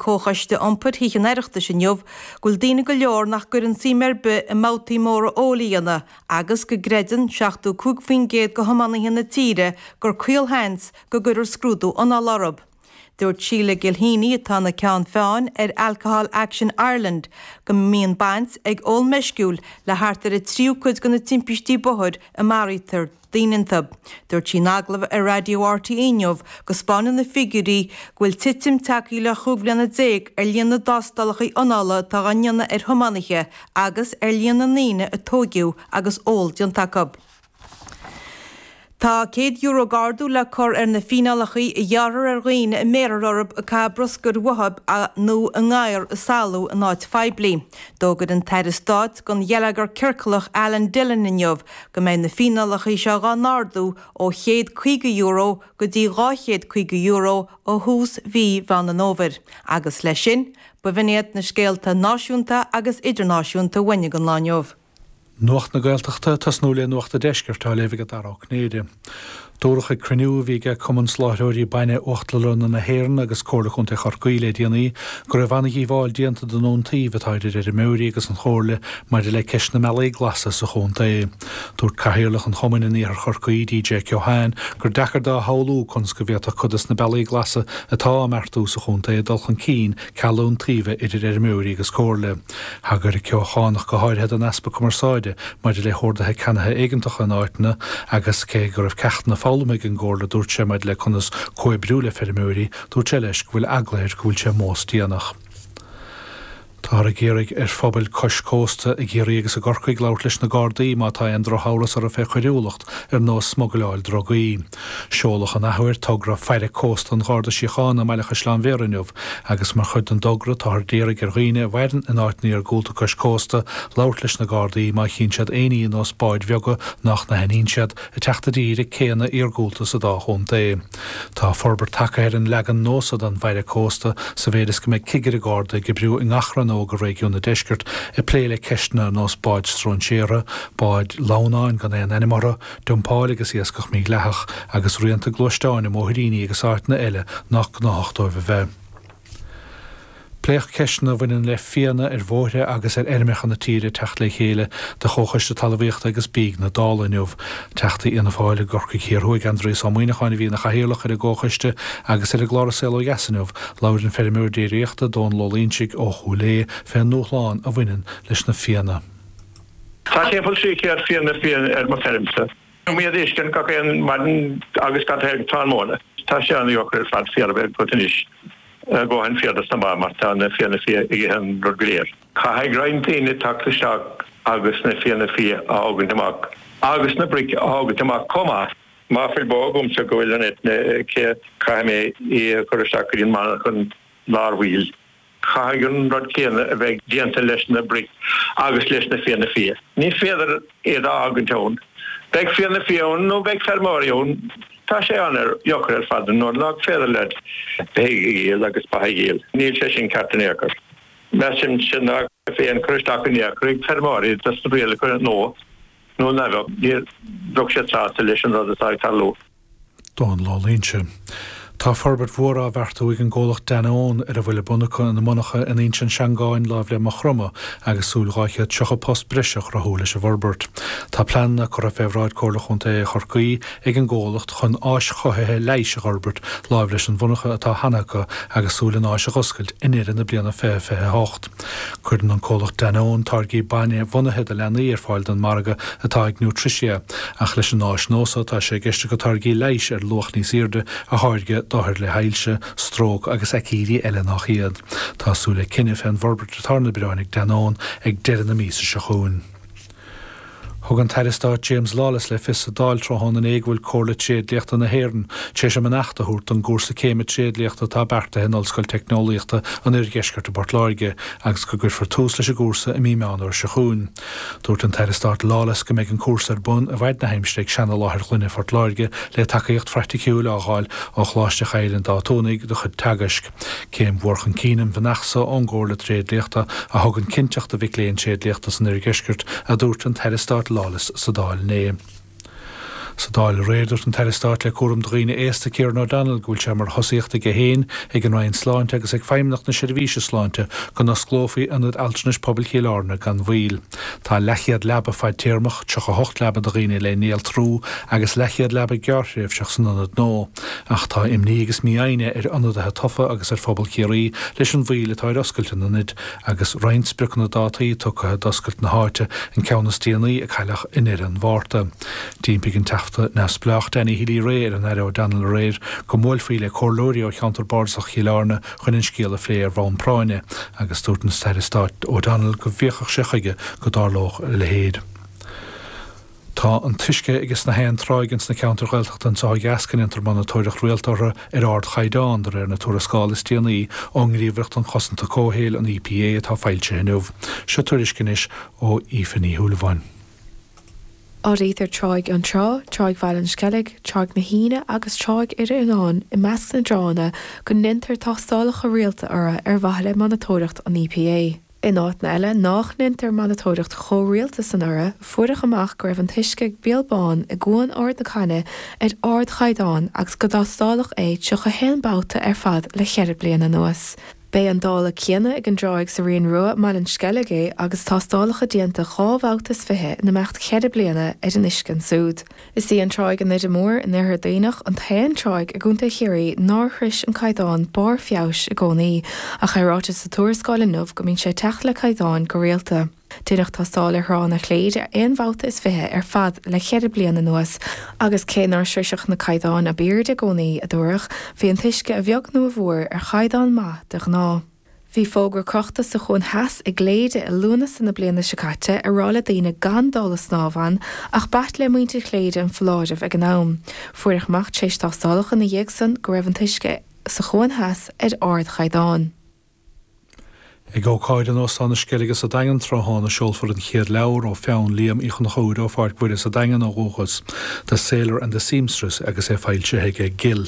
Comhchoiste Iompair Thithe an Oireachtais inniu go bhfuil daoine go leor nach gcuireann suim ar bith i mbabhtaí móra óil a dhéanamh agus go gcreideann 75% de thiománaithe na tíre gur caolsheans go gcuirfear scrúdú anála orthu. Dúirt Sheila Gilheany, atá ina ceann feadhain ar Alcohol Action Ireland, go mbíonn baint ag ól meisciúil le thart ar an tríú cuid de na timpistí bóthair a maraítear. daoine iontu. Dúirt sí in agallamh ar Raidió RTÉ inniu go 'spáineann na figiúirí go bhfuil titim tagtha le chúig bhliana déag ar líon na dtástálacha anála atá á ndéanamh ar thiománaithe agus ar líon na ndaoine a tóigeadh agus ól déanta acu'. Tá €100 d'ardú le cur ar na fíneálacha a ghearrthar ar dhaoine a mbéarthar orthu ag caitheamh bruscair uathu nó a ngadhair ag salú in áit phoiblí. D'fhógair an tAire Stáit don Gheilleagar Ciorcalach Alan Dillon inniu go mbeidh na fíneálacha seo dhá n-ardú ó €150 go dtí €250 ó thús mhí Mheán an Fhómhair agus leis sin, b'in iad na scéalta náisiúnta agus idirnáisiúnta a tháinig an lá inniu. Nuacht na Gaeltachta ag tosnú le Nuacht an Deiscirt á léamh ag Dara Ó Cinnéide. Dúradh ag cruinniú a bhí aige Cumann Soláithreoirí Bainne Uachtarlanna na hÉireann agus Comhairle Chontae Chorcaí le déanaí go raibh an-dhíobháil déanta don iontaoibh atá idir fheirmeoirí agus an Chomhairle maidir le ceist na mBealaí Glasa sa chontae. Dúirt Cathaoirleach an Chumainn in Iarthar Chorcaí, DJ Keohane, gur deacair dó a shamhlú conas go bhféadfadh cuid dos na Bealaí Glasa atá á mbeartú sa chontae dul chun cinn ceal iontaoibhe idir fheirmeoirí agus Comhairle. Thagair an Ceochánach go háirithe don easpa cumarsáide maidir le hordaithe ceannaithe éigeantacha in áiteanna agus cé go raibh ceachtanna foghlamtha ag an gComhairle a dúirt sé maidir le conas comhoibriú le feirmeoirí, dúirt sé leis go bhfuil eagla air go bhfuil sé mós déanach. Táthar ag iarraidh ar phobail cois cósta i gCiarraí agus i gCorcaigh labhairt leis na Gardaí má tá aon drochamhras orthu fé choiriúlacht ar nós smugleáil drugaí. Seoladh an athuair togra Faire Cósta an Gharda Síochána i mBaile Chaisleáin Bhéarra inniu agus mar chuid den dtogra táthar d'iarraidh ar dhaoine a mhaireann in áiteanna iargúlta cois cósta labhairt leis na Gardaí má chíonn siad aon ní ar nós báid bheaga nách n-aithníonn siad ag teacht i dtír ag céanna iargúlta sa dá chontae. Tá forbairt tagtha ar an leagan nua so den bhfaire cósta sa mhéid is go mbeidh Cigire Garda ag oibriú i ngach rannóg i réigiún an Deiscirt ag plé le ceisteanna ar nós báid stróinséartha, báid lamhnáin gan aon ainm orthu, Dumpáil agus iascach mídhleathach agus rianta gluaisteáin i mbóithríní agus áiteanna eile nách gnáthach dóibh a bheith. Pléadh ceisteanna a bhaineann le fianna ar bhóithre agus ar fheirmeacha na tíre ag teacht le chéile de Chomhchoiste Talmhaíochta agus Bídh na Dála inniu. Teachta Fhianna Fáil i gCorcaigh Thiar Thuaidh Aindrias Ó Muimhneacháin a bhí ina chathaoirleach ar an gComhchoiste agus ar an gclár An Saol Ó Dheas inniu labhair an feirmeoir déiríochta Dónal Ó Loingsigh ó Chúil Aodha fé an ndúshlán a bhaineann leis na fianna. Tá timpeall trí céad fianna fia ar mo feirmse. Bíonn mé a fheiscint gach aon maidin agus gach aon tráthnóna. Tá sé ana dheacair ar fad féar a bheith agat anois a dhóthain féar dos na ba mar tá na fianna fia ag ithe an rud go léir. Caithfidh roinnt daoine teacht isteach agus na fianna fia a thógaint amach agus na broic a thógaint amach comh maith. Má fuil bó agamsa go bhfuil an eitinn aici caithfidh mé í a chur isteach go dtí an monarchan láithreach baill. Caithfidh an rud céanna a bheith déanta leis na broic agus leis na fianna fia. Ní féidir iad a fhágaint ann. Beidh fianna fia ann nó beidh feirmeoirí ann. Tá sé ana dheacair ar fad nuair nách féidir leat bheith a dhíol agus ba a dhíol. Níl sé sin ceart in aon chor. Measaimse ná cuirfí aon chur isteach in aon chor ag feirmeoirí dos na rialacha nua nó ná beadh, ní bheadh siad sásta leis an rud atá ag tarlú. Dónal Ó Loingsigh. Tá forbairt mhór á bheartú ag an gcomhlacht Danone ar a bhfuil ar bun acu ina monarcha in Inse na Seangán láimh le Maigh Chromtha agus súil 230 post breise a chruthú leis an bhforbairt. Tá pleananna curtha fé bhráid Chomhairle Chontae Chorcaí ag an gcomhlacht chun áis chothaithe leighis a fhorbairt láimh leis an mhonarcha atá cheana acu agus súil an áis a dh'oscailt i ndeireadh na bliana 2028. Cuireann an comhlacht Danone táirgí bainnebhunaithe do leanaí ar fáil don margadh atá ag Nutricia, ach leis an áis nua so tá sé i gceist acu táirgí leighis ar luach níos airde a tháirgeadh d'othair le hailse, stróc agus aicídí eile nach iad. Tá súil le cinneadh fén bhforbairt atá ar na bioráin ag Danone ag deireadh na míosa seo chugainn. Thug an tAire Stáit James Lawless le fios sa Dáil tráthnóna inné go bhfuil Comhairle Tréadliachta na hÉireann tar éis a mbeannacht a thabhairt don gcúrsa céime tréadliachta atá beartaithe in Ollscoil Teicneolaíochta an Oirdheiscirt i bPort Láirge agus go gcuirfear tús leis an gcúrsa i mí Meán Fhómhair seo chugainn. Dúirt an tAire Stáit Lawless go mbeidh an cúrsa ar bun i bhfaid na haimsire ag seanaláthair ghloine Phort Láirge le tacaíocht phraiticiúil á fháil ó Choláiste Chill an Dátúnaigh do chuid teagaisc. Céim mhór chun cinn an bheannacht so ón gComhairle Tréadliachta a thugann cinnteacht do mhic léinn tréadliachta san Oirdheisceart a dúirt an tAire Stáit Lawless sa Dáil inné. Sa Dáil aréir dúirt an tAire Stáit le Cúram do Dhaoine Aosta Kieran O'Donnell go bhfuil sé mar thosaíocht aige féin, ag an Roinn Sláinte agus ag Feidhmeannacht na Seirbhíse Sláinte go n-osclófaí Ionad Altranais Pobail Chill Airne gan mhoill. Tá leathchéad leaba fadtéarmach, 38 leaba do dhaoine le néaltrú agus leathchéad leaba gearrthréimhseach san ionad nua, ach tá imní agus mífhoighne ar ionadaithe tofa agus ar phobal Chiarraí leis an mhoill atá ar oscailt an Ionaid agus roinnt spriocanna dátaí tugtha d'oscailt na háite, an ceann is déanaí a cailleadh i ndeireadh an Mhárta. D'impigh an Teachta neamhspleách Danny Healy-Rae ar an Aire O'Donnell aréir go mbuailfí le comhairleoirí ó cheantar Bardasach Chill Airne Chun an scéal a phlé ar bhonn práinne agus dúirt an tAire Stáit O'Donnell go bhféachfadh sé chuige go dtarlódh a leithéid. Tá an t-uisce aige sna haon tránna ins na ceantair Ghaeltachta anseo ó dheas go ndéantar monatóireacht rialta orthu ar ardchaighdeán, de réir na tuarascála is déanaí ón nGníomhaireacht um Chosanta Comhshaoil an EPA atá foilsithe inniu. Seo tuairisc anois ó Aoife Ní Shúilleabháin. Áirítear Tráigh Fionntrá, Tráigh Bhaile an Sceilg, Tráigh na hUíne agus Tráigh Dhoire Fhíonáin i measc na dtránna go ndeintear tástálacha rialta orthu ar mhaithe le monatóireacht an EPA. In áiteanna eile nách ndeintear monatóireacht chomh rialta san orthu, fuaireadh amach go raibh an t-uisce ag Beal Bán i gCuan Ard na Caithne ar ardchaighdeán agus gur tástáladh é 31 babhta ar fad le ceithre bliana anuas. B'é an dála céanna ag an dtráigh sa Rinn Rua i mBaile an Sceilg agus tástálacha déanta dhá bhabhta is fiche in imeacht cheithre bliana ar an uisce ansúd. Is í an tráigh i nDoire Mór in Oirthear Duibhneach an t-aon tráigh i gContae Chiarraí nár shrois an caighdeán barr feabhais i gcónaí, ach é ráite sa tuarascáil inniu go mbíonn sé ag teacht le caighdeáin go rialta. Deineadh tástáil ar thránna Chléire aon bhabhta is fiche ar fad le ceithre bliana anuas agus cé nár sroiseadh na caighdeáin ab airde i gcónaí, a dúradh, bhí an t-uisce a bheag nó a mhór ar chaighdeán maith de ghnáth. Bhí fógra crochta sa Chuan Theas i gCléire i Lúnasa na bliana seo caite ag rá le daoine gan dul ag snámh ann ach b'ait le muintir Chléire an foláireamh ag an am. Fuaireadh amach tar éis tástálacha ina dhiaidh san go raibh an t-uisce sa Chuan Theas ar ardchaighdeán. Ag ócáid in Óstán na Sceilge sa Daingean tráthnóna seolfar an chéad leabhar ó pheann Liam Uí Chonchubhair ó Pháirc Mhuire sa Daingean ó dhúchas, The Sailor and the Seamstress agus é foilsithe aige Gill.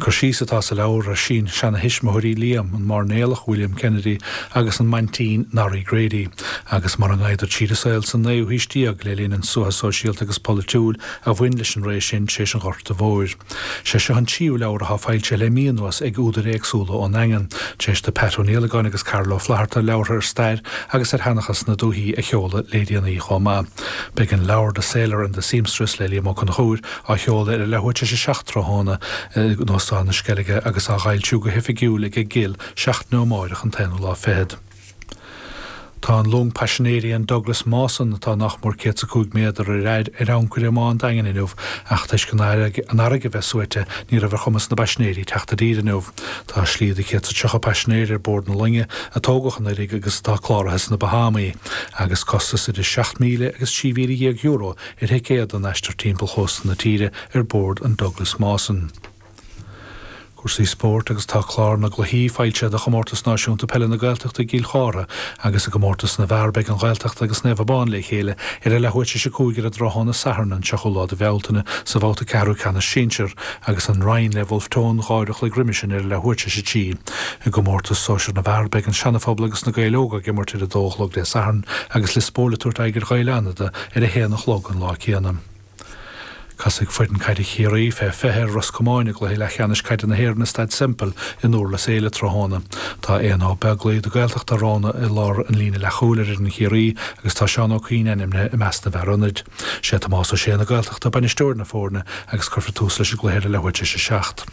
Cur síos atá sa leabhar ar shín seana thuismitheoirí Liam, an Máirnéalach William Kennedy agus an Maintín Norrie Grady, agus mar a ghabhadar tríd an saol san naoú haois déag le linn an tsuaite sóisialta agus polaitiúil a bhain leis an ré sin tar éis an Ghorta Mhóir. Sé seo an tríú leabhar atá foilsithe le mí anuas ag údair éagsúla ón Daingean. T'réis do Ted Creedon agus Karl Ó Flatharta leabhartha ar stair agus ar sheanchas na dúthaí a sheoladh le déanaí chomh maith. Beidh an leabhar The Sailor and the Seamstress le Liam Ó Conchúir á sheoladh ar an leathuair t'réis a seacht tráthnóna in Óstán na Sceilge agus á fhoilsiú go hoifigiúil aige Gill seachtain ó amáireach an t-aonú lá fichead Tá an long paisinéirí an Douglas Mawson, atá nach mór céad 's a cúig méadar ar fhaid, ar ancaire i mBá an Daingin inniu ach toisc an fharraige bheith suaite ní raibh ar chumas na bpaisinéirí teacht i dtír inniu. Tá slí do chéad 's a tríocha paisinéir ar bord na loinge, a tógadh anuiridh agus atá cláraithe sna Bahámaí, agus costas idir seacht míle agus trí mhíle dhéag euro ar thicéad don aistear timpeall chósta na tíre ar bord an Douglas Mawson. Cúrsaí Spóirt agus tá clár na gcluichí foilsithe do Chomórtas Náisiúnta Peile na Gaeltachta i gCill Chártha agus i gComórtas na bhFear beidh An Ghaeltacht agus Naomh Abán le chéile ar a leathuair tar éis a cúig ar an dtráthnóna Sathairn an tríochú lá de Bhealtaine sa bhabhta ceathrú ceannais Sinsir agus An Rinn le Bhulf Tón dhá uair a chloig roimhe sin ar a leathuair tar éis a trí. I gComórtas Sóisir na bhFear beidh An Seana-Phobal agus Na Gaeil Óga ag imirt ar a dó a chlog Dé Sathairn agus Lios Póil ag tabhairt aghaidh ar Ghaeil Fhánada ar a haon a chlog an lá céanna. Casfaidh foireann caide Chiarraí fé 20 ar Ros Comáin i gcluiche leathcheannais caide na hÉireann i Staid Semple i nDúrlas Éile tráthnóna. Tá Éanna Ó Beaglaoi de Ghaeltacht Uíbh Ráthaigh i lár an líne leathchúil ar fhoireann Chiarraí agus tá Seán Ó Cuinn ainmnithe i measc na bhfear ionaid. Sé Tomás Ó Sé na Gaeltachta bainisteoir na foirne agus cuirfear tús leis an gcluiche ar a leathuair tar éis a seacht.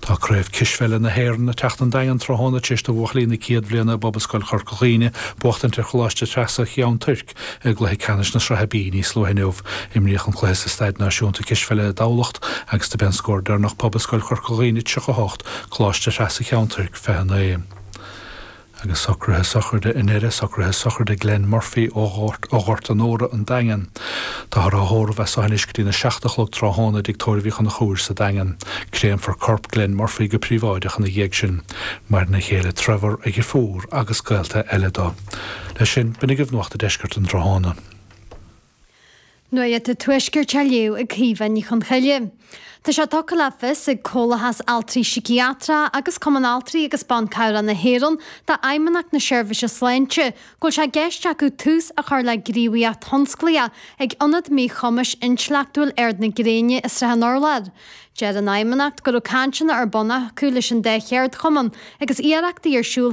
Tá Craobh Cispheile na hÉireann ag teacht 'on Daingean tráthnóna tar éis do bhuachaillí na céad bhliana i bPobalscoil Chorca Dhuibhne buachtaint ar Choláiste Threasa Cheann Tuirc i gcluiche ceannais na Sraithe B. Níos luaithe inniu, imríodh an cluiche sa Staid Náisiúnta Cispheile i dTamhlacht agus do b'é an scór deireanach Pobalscoil Chorca Dhuibhne 38, Coláiste Threasa Cheann Tuirc 29. Agus socruithe sochraide ina dheireadh, socruithe sochraide Glenn Murphy ó Ghort Onóra, an Daingean. Táthar á thórramh as seo anois go dtína seacht a chlog tráthnóna i dtigh tórraimh Uí Chonchúir sa Daingean. Créamfar corp Glenn Murphy go príobháideach ina dhiaidh sin. Maireann a chéile Trevor, a dheirfiúr agus gaolta eile dó. Leis sin, b'in agaibh nuacht an deiscirt an tráthnóna. Nuacht an Tuaiscirt á léamh ag Caoimhe Ní Chonchoille, tá sé tugtha le fios ag Comhlathas Altraí Síciatracha agus Cumann Altraí agus Ban Cabhrach na hÉireann do Fheidhmeannacht na Seirbhise Sláinte go bhfuil sé i gceist acu tús a chur le gníomhaíocht thionsclaíoch ag Ionad Míchumais Intleachtúil Ard na Gréine i Srath an Urláir. Deir an Fheidhmeannacht go raibh cainteanna ar bun acu leis an dá cheardchumann agus iarrachtaí ar siúl